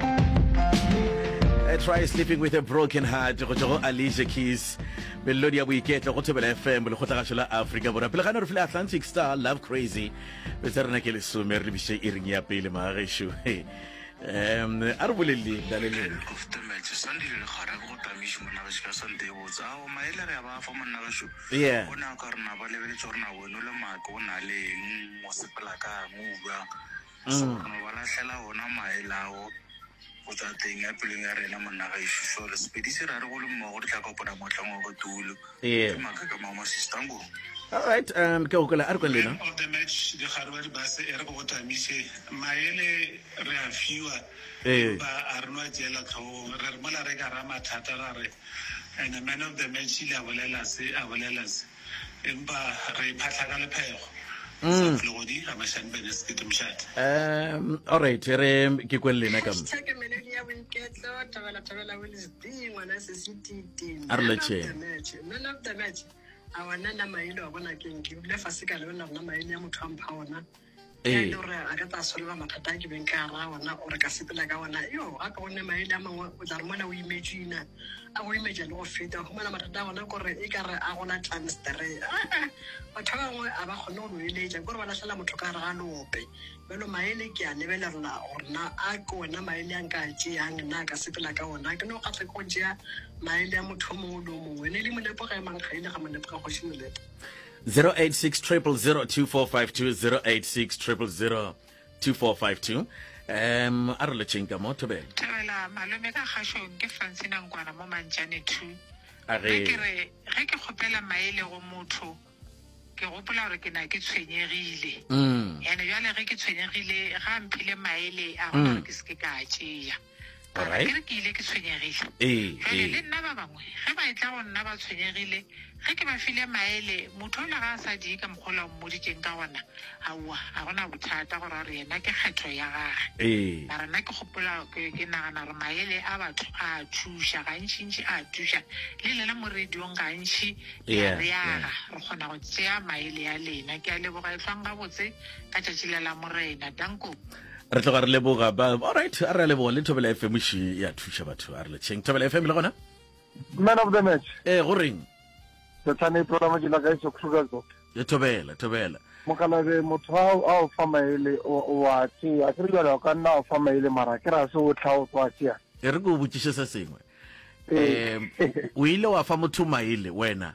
I try sleeping with a broken heart go tšwa go alicia keys melodi ya boiketlo go thobela fm lekgotlagašo la afrika borwa pele gane re file atlantic star love crazy be tsa rena ke lesome re lebiše e reng ya pele maagešo um a re boleleng laleleng koftometse sandile le kgara ke go tamiše monnageši ka sante e botsa ao maele re a ba fa monnageši Yeah. o ne a ka rena ba lebeletse gore na weno le maake o na le eng o sepela kang o buang Sogana o ba lahlela ona mae lawo go tšwa teng ya pelong ya rena, monna gaešo Šole. Sepedi se ra re go le mmogo re tla kopana mohlang wa botulo. Ke maaka ka mao masistangong. Alright, um, ke gokola a re kwa lena. Man of the match dikgadi ba dibase e re go tamiše maele re a fiwa empa a re no a tšeela tlhogong re re mola re ka ra mathata ra re and man of the match ile a bolela se a bolela se Empa re e phatla ka lephego. Mm. Um, all right, re ke kwele lena ka a re letšheng a wa nna nna maele wa bona ke nke dule fa se ka le wena rona maele ya motho a mpha ona ee o re a ka tsa solva mathata a ke beng ka ra ona o re ka sepela ka ona yo a ka one maele a mangwe o tla re mona o imetsina a go imetša le go feta go mona mathata a gona kore e ka re a gola times three batho ba bangwe a ba kgone go lo eletša kore ba lahlela motho ka gare ga lope bjalo maele ke a lebelela gore na a ke ona maele a nka tšeang na ka sepela ka ona ke no kgatlha ke go tšea maele a motho o mongwe le o mongwe ne le molepo ga e mang ga ile ga molepo ga kgoši molepo 0860002452 0860002452 um a re letšeng ka mo thobela thobela malome ka kgašong ke francina nkwana mo mantšane two a re ke re ge ke kgopela maele go motho ke gopola gore ke na ke tshwenyegile mm. ene jale ge ke tshwenyegile ga mphile maele a gona mm. gore ke seke ka a tšea ka re ke re ke ile ke tshwenyegile jale le nna ba bangwe ge ba e tla go nna ba tshwenyegile ge ke ba file maele motho ola ga a sa die ka mokgola o mmoditseng ka gona aowa ga gona bothata gore a re yena ke kgetho ya gage mara nna ke gopola ke nagana gore maele a batho a thuša gantšintši a thuša le lena mo radiong gantši ya re yaga re kgona go tsea maele ya lena ke a leboga e tlwang gabotse ka tšatši la la morena danko re tloga re leboga ba alright a re a leboga le thobela fm še ya thuša batho a re letšheng thobela fm le gona man of the match ee go reng sethane e tlola mojela ka iso krugersdorp e thobela thobela mokalabe motho a o fa maele wa tsea ke re jale o ka nna o fa maele mara ke ra se o tlha o tswa tsea e re ke o botšiše se sengwe um o ile wa fa motho maele wena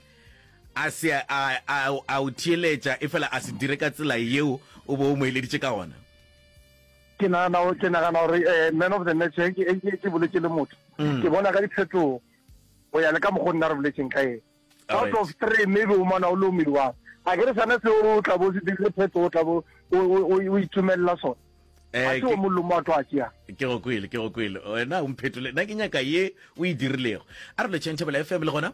a se a, a, a o theeletša e fela a se dire ka tsela yeo o bo o mo eleditše ka gona ke nagana ke nagana gore eh, man of the match eh, eh, ke ke boletse le motho mm. ke bona ka diphetogo go ya le ka mokgone na re boletseng ka ene out of three maybe o mana o le omelwang a ke re sana se o tla bo se dirile phetogo o tla bo o itumelela sone a se o mollo mo a tlo a tšea ke go kwele ke go kwele wena o mphetole nna ke nyaka ye o e dirilego a re lo change f m le gona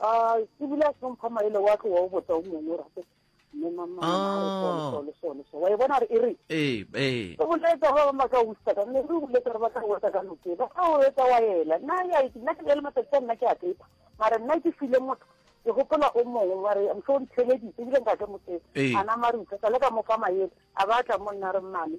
A ke bile a hlompha maele wa ke wa o botsa o mongwe o rate mme mama Ah. le sone so wa e bona re e re ee ee o boletsa ba ba maka o usa ka mme re boletsa re batla go wetsa ka noke ba ka o wetsa wa ela nna ya ke nna ke le matsatsi a nna ke a pepa mara nna ke file motho ke gopola o mongwe wa re mso o ntheleditse ebile nka ke motse Ee. a nama re utlwa sa le ka mo fa maele a ba a tla mo nna re mmane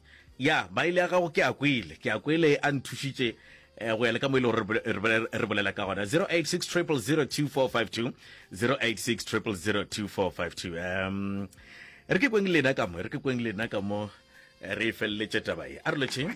Ya, Baile ya gago ke a kwele, ke a kwele a nthušitše eh, go ya le ka mo e le gore re bole- re bole- re bolela ka gona 086 0002452 086 0002452 um re ke kweng lena ka mo re ke kweng lena ka mo eh, re e feleletše taba ye a re lotšheng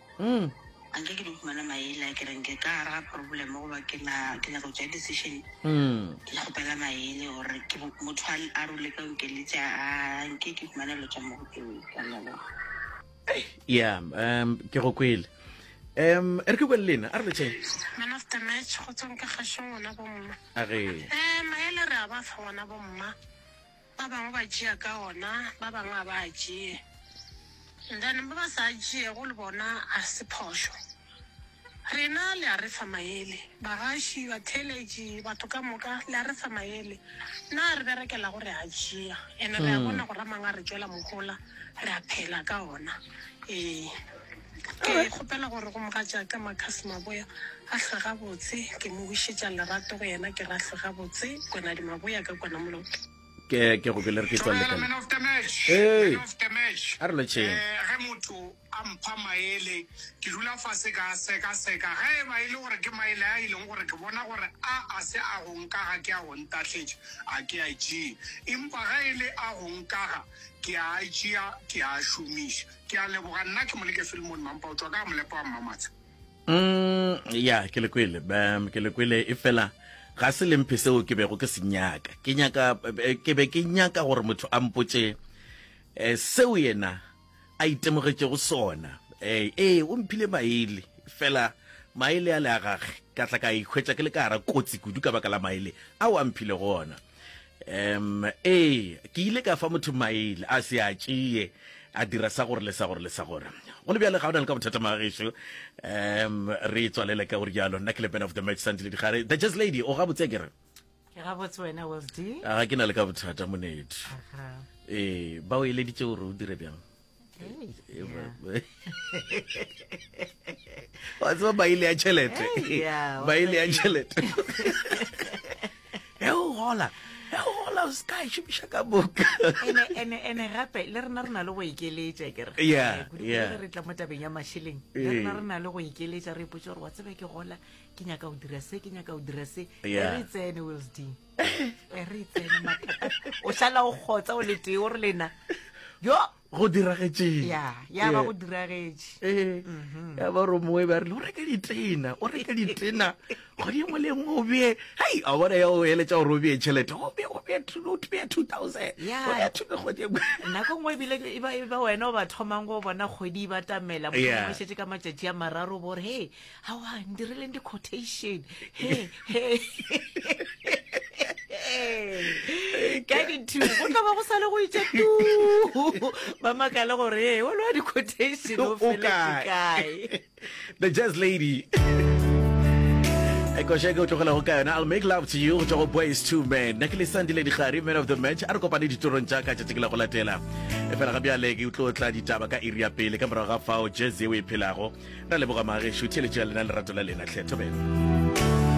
Mm. a nke ke di humana maele a kereng ke ka gara ga problem goba ke na- ke nyaka go tšea decision Mm. ke kgopela maele gore ke bo- motho a a role ka okeletse a nke ke humana lo tša mogopeo ka lona ya um ke go kwele um e re ke kwele lena a re letšhe man of the match go tswang ka kgašong ngwana bomma a re um maele re a ba fa ngwana bomma Ba bangwe ba tšea ka ona, ba bangwe ga ba a tšee. And then ba ba sa a tšeego le bona a se phošo. Rena le a re fa maele, bagaši, batheeletši, batho ka moka, le a re fa maele. Na re berekela go re a tšea? And re a bona gore a mangwe a re tšwela mohola, re a phela ka ona. Ee. Ke kgopela gore go mogatšaka Marcus Maboya a hlwe gabotse. Ke mo wišetša lerato go yena ke re a hlwe gabotse. Konadi Maboya ka kwana moloto. Ke ke go kwele re ke tswa lekana. Man of the match. Hey. Man of the match. A re lo tšheng. Eh, ge motho a mpha maele ke dula fase ka seka seka ge e ba e le gore ke maele a e leng gore ke bona gore a a se a go nkaga ke a go ntahletše a ke a tšee empa ge e le a go nkaga ke a tšea ke a šomiša Ke a leboga nna ke moleke Filmon Mampa o tswa ka molepo wa Mmamatsha. Mm, ya ke le kwele um, ke le kwele e fela ga se lemphe seo ke bego ke se nyaka ke nyaka eh, ke be ke nyaka gore motho a mpotše um seo yena a itemogetšego sona um ee o mphile maele fela maele a le a gage ka tla ka ikhwetša ke le ka gara kotsi kudu ka baka la maele ao a mphile go ona um ee ke ile ka fa motho maele a se a tšee a dira sa gore le sa gore le sa gore go le bjale ga o na le ka bothata magageso um re tswalele ka gore jalo nna ke le ben of the match santile digare the just lady o gabotse kere ga ke na le ka bothata monedi ee ba o eleditse gore o dire bjang wa tseba baile ya tšhelete baile ya tšhelete e o gola e o gola o seka e šomiša ka boka ene gape le rena re na le go ikeletša kere re tla mo tabeng ya mašeleng le rena re na le go ikeletša re ipotsa gore wa tsebe ke gola ke nyaka go dira se ke nyaka go dira se e re tsene wilsding e re itsene mathata o šala o kgotsa o letee o re lena yo go diragetšeng ya ya ba go diragetše ee ya ba gore moe ba rile o reke ditena o reke ditena kgwedi engwe le engwe o bee hei a bona ya o eletša gore o bee tšhelete o bee o bee two o bee two thousand Ya. o bee two kgwedi engwe nako nngwe ebile e ba e ba wena o ba thomang go bona kgwedi e batamela Yeah. mošetse ka matšatši a mararo bore he awa ndireleng di-quotation he he ka dithu go tla ba go sale go itša tu ba makale gore e wa lowa di-quotation o O kae?" felekae the jazz lady ekošeke o tlogelago ka yona i'll make love to you go tšwa go boys two man nna ke lesandile digare man of the match a re kopane ditorong tša ka tšatši ke la go latela efela ga bjale ke utlo tla ditaba ka iri ya pele ka morago ga fao jazz yeo e phelago ra leboga magešu theeletšo ya lena lerato la lena tlhe thobela